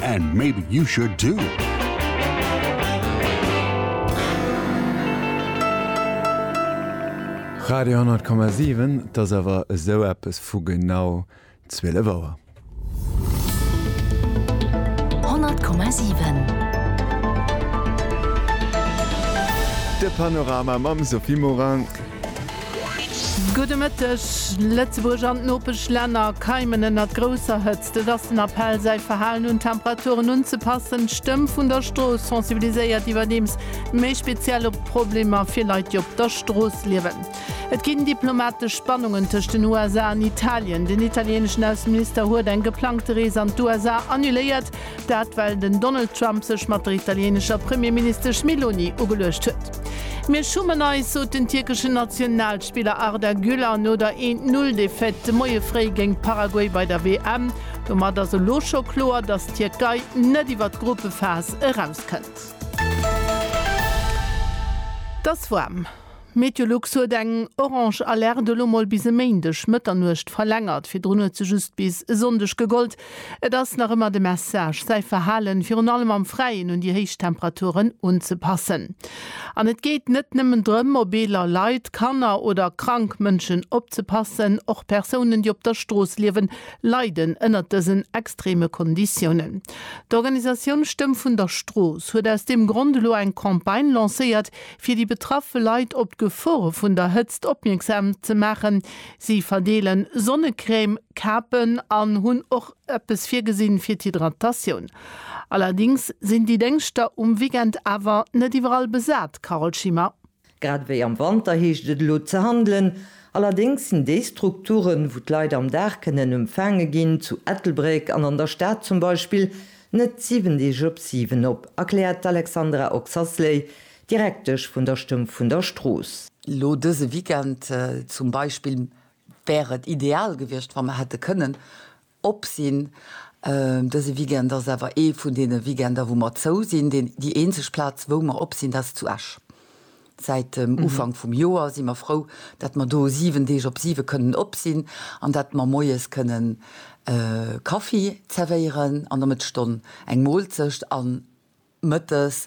And maybe you should too! Radio 10,7, et ass awer esou eppes vu genau 12 Auer. 100,7 De Panorama mam Sophie Morang. Gudde Mëtteg! Lëtzebuerg an d'Nopeschlänner keimen ënnert grousser Hëtzt. Et ass den Appell, säi Verhalen un d'Temperaturen unzepassen. D'Stëmm vun der Strooss sensibiliséiert iwwerdeems méi speziell op d'Problemer fir Leit, déi op der Strooss liewen. Et ginn diplomatesch Spannungen tëscht den USA an Italien. Den italieeneschen Ausseminister huet eng geplangte Rees an d'USA annuléiert, Dat well den Donald Trump sech mat der italienescher Premierministesch Meloni ugeluecht huet. Mir schummen eis, sot den tierkeschen Nationalspiller Arda Güler no der 'een Null Defaite' de Moie fréi géint Paraguay bei der WM. Domat ass elo scho kloer, datt d'Tierkei net iwwer d'Gruppephas erauskënnt. T'ass waarm. Meteolux huet eng orange Alerte elo mol bis e Méindeg Mëtternuecht verlängert. Virdrun huet se just bis e Sonndeg gegollt. Et ass nach ëmmer de Message, säi Verhalen, virun allem am Fräien, un déi héich Temperaturen unzepassen. An et geet net nëmmen drëm, op eeler Leit, Kanner oder krank Mënschen opzepassen. Och Persounen, déi op der Strooss liewen, leiden ënnert dësen extreme Konditiounen. D'Organisatioun Stëmm vun der Strooss huet aus deem Grond elo eng Campagne lancéiert, Fir déi betraffe Leit op d'Gefore vun der Hëtzt opmierksam ze maachen, si verdeele Sonnecrème, Kapen an hunn och eppes virgesinn fir d'Hydratatioun. Allerdéngs sinn déi Déngschter um Weekend awer net iwwerall besat, Carole Schimmer. Grad ewéi am Wanter heescht et elo ze handelen. Allerdéngs sinn déi Strukturen, wou d'Leit am Dag kënnen empfaange ginn, zu Ettelbréck an an der Stad zum Beispill, Net 7 Deeg op 7 op, erkläert d'Alexandra Oxasley, Direktesch vun der Stëmm vun der Strooss. Elo dëse Weekend zum Beispill wär et ideal gewiescht, wa mer hätte kënnen op sinn. Dëse Weekend ass awer ee vun deene Weekender, wou mer zou sinn. Déi eenzeg Plaz, wou mer op sinn, dat ass zu Esch. Säit dem Ufank vum Joer si mer frou, dat mer do 7 Deeg op 7 kënnen op sinn an dat mer moies kënnen Kaffi zerwéieren an der Mëttesstonn eng Moolzecht a mëttes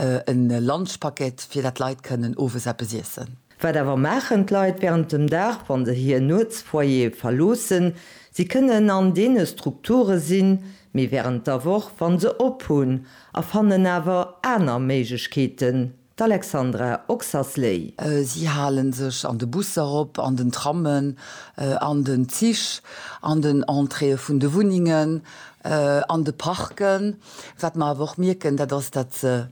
e Lunchpaket, fir dat d'Leit kënnen owes eppes iessen. Wat awer maachen d'Leit während dem Dag, wa se hir Nuetsfoyer verloossen? Si kënnen an deene Strukture sinn, mee während der Woch, wa se op hunn, a fannen awer aner Méiglechkeeten, D'Alexandra Oxasley. Si hale sech an de Busser op, an den Trammen, an den Zich, an den Entréeë vun de Wunnengen, an de Parken. Wat mer awer och mierken, dat ass, datt se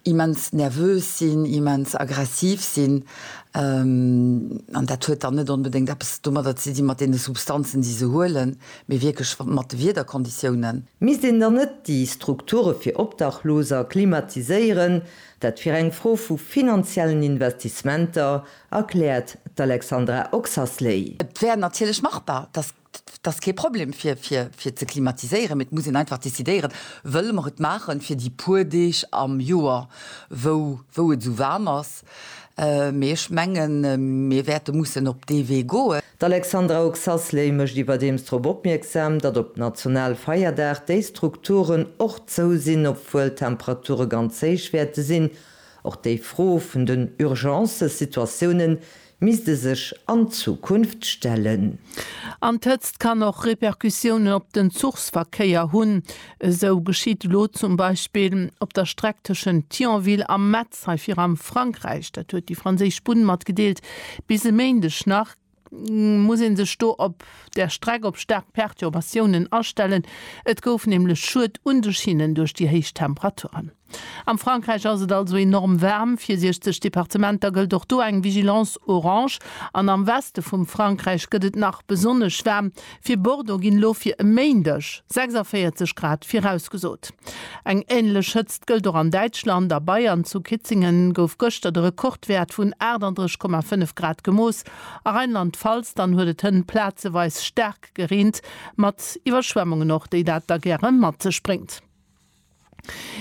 immens nervös sinn, immens aggressiv sinn. An dat huet dann net onbedéngt eppes domadder ze dinn, mat deene Substanzen, déi se huelen, mee wierklech mat de Wiederkonditiounen. Misst een dann net déi Strukture fir Obdachloser klimatiséieren? Dat wier eng Fro vu finanziellen Investissementer, erkläert d'Alexandra Oxasley. Et wär natierlech machbar, dat ass kee Problem fir ze klimatiséieren, mee et muss een einfach decidéieren, Wëlle mer et maachen fir déi puer Deeg am Joer, wou et esou waarm ass? Mee ech menge mir wäerte mussen op dee Wee goen. D'Alexandra Oxasley mécht iwwerdeems drop opmierksam, datt op Nationalfeierdag déi Strukturen och zou sinn, obwuel d'Temperature ganz héich wäerte sinn. Och déi Fro vun den Urgence-Situatiounen misst e sech an Zukunft stellen. An d'Hëtzt kann och Repercussiounen op den Zuchsverkéier hunn. Esou geschitt elo zum Beispill op der Streck tëschent Thionville a Metz. Hei fir am Frankräich, dat huet déi franséisch Bunn matgedeelt, bis e Méindeg nach, muss ee sech do op der Streck op staark Perturbatiounen astellen. Et gouf nämlech Schued un de Schinnen duerch déi héich Temperaturen. Am Frankräich ass et also enorm waarm. Fir 60 Departementer gëllt och do eng Vigilance orange an am Weste vum Frankräich gëtt et nach besonnesch waarm, Fir Bordeaux ginn elo fir e Méindeg 46 Grad virausgesot. Eng änlech Hëtzt gëllt och an Däitschland. A Bayern, zu Kitzingen, gouf gëschter de Rekordwäert vun 38,5 Grad gemooss. A Rheinland-Pfalz dann huet et hënn plazeweis staark gereent, mat Iwwerschwemmungen och, déi dat da gäre mat sech bréngt.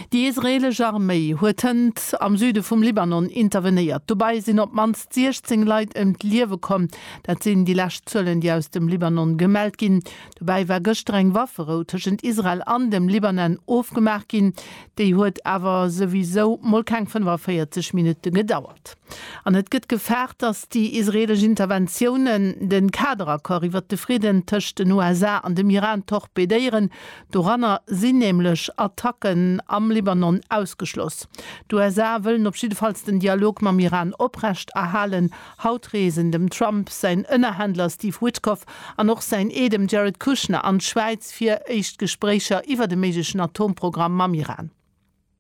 Déi israeelesch Arméi huet hënt am Süde vum Libanon intervenéiert. Dobei sinn op d'mannst 16 Leit ëm d'Liewe komm. Dat sinn déi lescht Zuelen, déi aus dem Libanon gemellt ginn. Dobäi war gëschter eng Wafferou tëschent Israel an dem Libanon ofgemaach ginn. Déi huet awer souwisou mol keng 45 Minutte gedauert. geklappt. An et gëtt gefaart, datt déi israeelesch Interventiounen de Kaderaccord iwwert de Fridden tëscht den USA an dem Iran torpedéieren. Doranner sinn nämlech Attacken am Libanon ausgeschloss. D'USA wëllen op jiddefalls den Dialog mam Iran oprecht erhalen. Haut reesen dem Trump säin Ënnerhändler Steve Witkoff an och säin Ee, dem Jared Kushner, an d'Schwäiz fir éischt Gespréicher iwwert e méiglechen Atomprogramm mam Iran.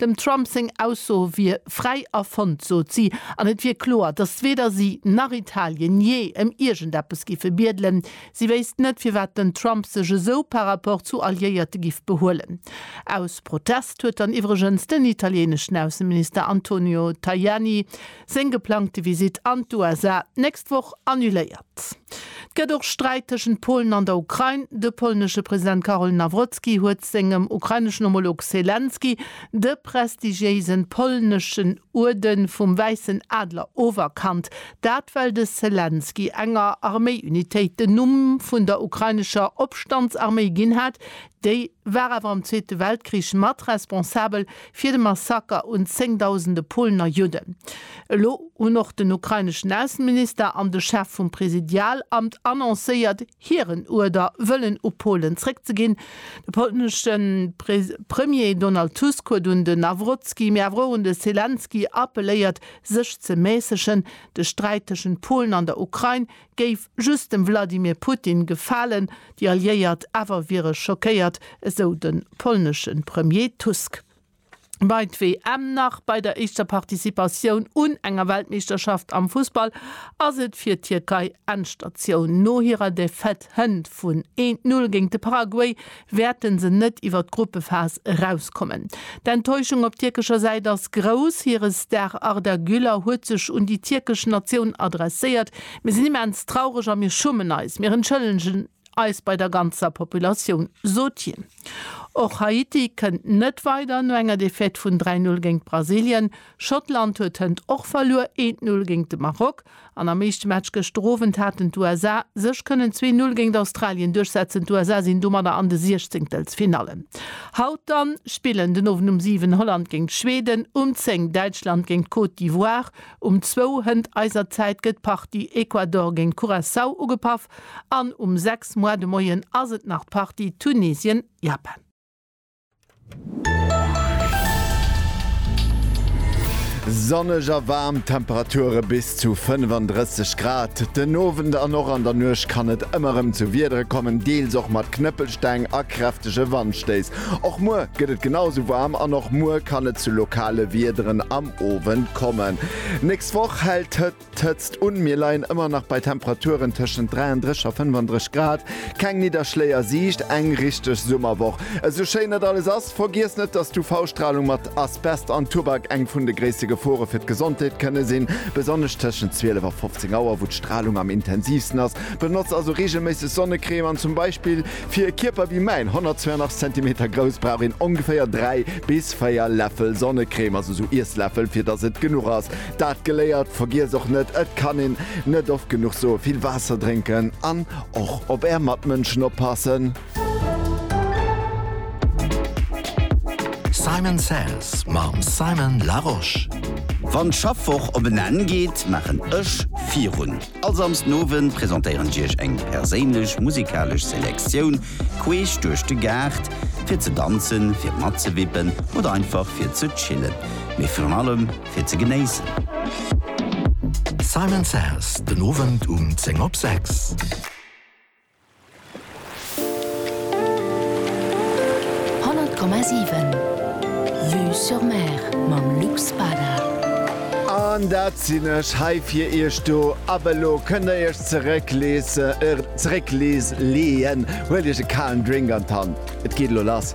Dem Trump seng Ausso wier fräi erfonnt, sot si, an et wier kloer, datt weder si nach Italien jee ëm iergendeppes giffe biedelen. Si wéisst net, firwat den Trump sech esou par rapport zu Alliéierte giff behuelen. Aus Protest huet dann iwwregens den italieneschen Ausseminister Antonio Tajani seng geplangte Visitt an d'USA d'nächst Woch annuléiert. Et gëtt och Sträit tëschent Polen an der Ukrain. De polnesche President Karol Nawrocki huet sengem ukraineschen Homolog Selenskyj de prestigiéise polneschen Uerde vum Wäissen Adler oferkannt. Dat well de Selenskyj enger Arméi-Unitéit den Numm vun der ukrainescher Opstandsarméi ginn hat, Déi war awer am Zweete Weltkrich mat responsabel fir de Massaker un zéngdausende Polner Judden. Elo hunn och den ukraineschen Ausseminister an de Chef vum Präsidialamt annoncéiert, hiren Uerder wëllen u Polen zréckzeginn. De polnesche Premier Donald Tusk huet un de Nawrotski, mee awer och un de Selenskyj appelléiert, sech ze mässegen. De Sträit tëschent Polen an der Ukrain Géif just dem Wladimir Putin gefalen, déi Alliéiert awer wiere schockéiert, esou de polnesche Premier Tusk. Bei d'WM nach bei der éischter Participatioun un enger Weltmeeschterschaft am Fussball ass et fir d'Tierkei Endstatioun. No hirer Defaite hënt vun 1, 0 géint de Paraguay wäerte se net iwwer d'Gruppephas erauskommen. D'Enttäuschung op tierkescher Säit ass grouss. Hire Star Arda Güler huet sech un déi tierkesch Natioun adresséiert, Mir sinn immens traureg a mir schummen eis. Mir entschëllegen eis bei der ganzer Populatioun, sot hien. Och Haiti kënnt net weider no enger Defaite vun 3, 0 géint Brasilien. Schottland huet hënt och verluer, eent Null géint de Maroc. An am éischte Match gëschter Owend haten d'USA sech kënnen zwee Null géint Australien duerchsetzen. D'USA sinn domadder an de Siechzéngtelsfinallen. Haut dann spillen den Owend um 7 Holland géint Schweden, um 10 Däitschland géint d'Côte d'Ivoire. Um 2 Hënt eiser Zäit gëtt d'Partie Ecuador géint Curaçao ugepaff an um 6 Moar de Moien ass et nach d'Partie Tunesien-Japan. Sonneg a waarm Temperature bis zu 35 Grad. Den Owend an och an der Nuecht kann et ëmmer erëm zu Wiedere kommen, deels och mat Knëppelsteng a kräftege Wandstéiss. Och muer gëtt et genau esou waarm an och muer kann et zu lokale Wiederen am Owend kommen. D'nächst Woch hält. D'Hëtzt un, mir leien ëmmer nach bei Temperaturen tëschent 33 a 35 Grad, keng Nidderschléi a Siicht, eng richteg Summerwoch. Esou schéin dat alles ass, vergiess net, dass d'UV-Stralung mat Asbest an Tubak eng vun de gréisste Gefore fir d'Gesondheet kënne sinn, besonnesch tëschent 12 a 15 Auer, wou d'Stralung am intensivsten ass. Benotz also reegelméisseg Sonnecrème an zum Beispill fir e Kierper wéi mäin, 182 Zentimeter grouss, brauch een ongeféier 3 bis 4 Läffel Sonnecrème, also esou Iessläffel, fir dass et genuch ass. Dat geléiert, vergiess och net, et kann een net oft genuch soen, vill Waasser drénken an och op är Matmënschen oppassen. Simon Says mam Simon Larosche. Wann d'Schaffwoch op en Enn geet, maachen ech virun. All Samsdenowend presentéieren ech iech eng perséinlech musikalesch Selektioun queesch duerch de Gaart, fir ze danzen, fir matzewippen oder einfach fir ze chillen. Mee virun allem fir ze genéissen. Simon Says, den Owend um 10 op 6. An dat sinn ech hei fir iech do. Ab elo kënnt der iech zeréckleese, zerécklees, leeën. Huelt iech e kalen Drink an d'Hand, et geet elo lass.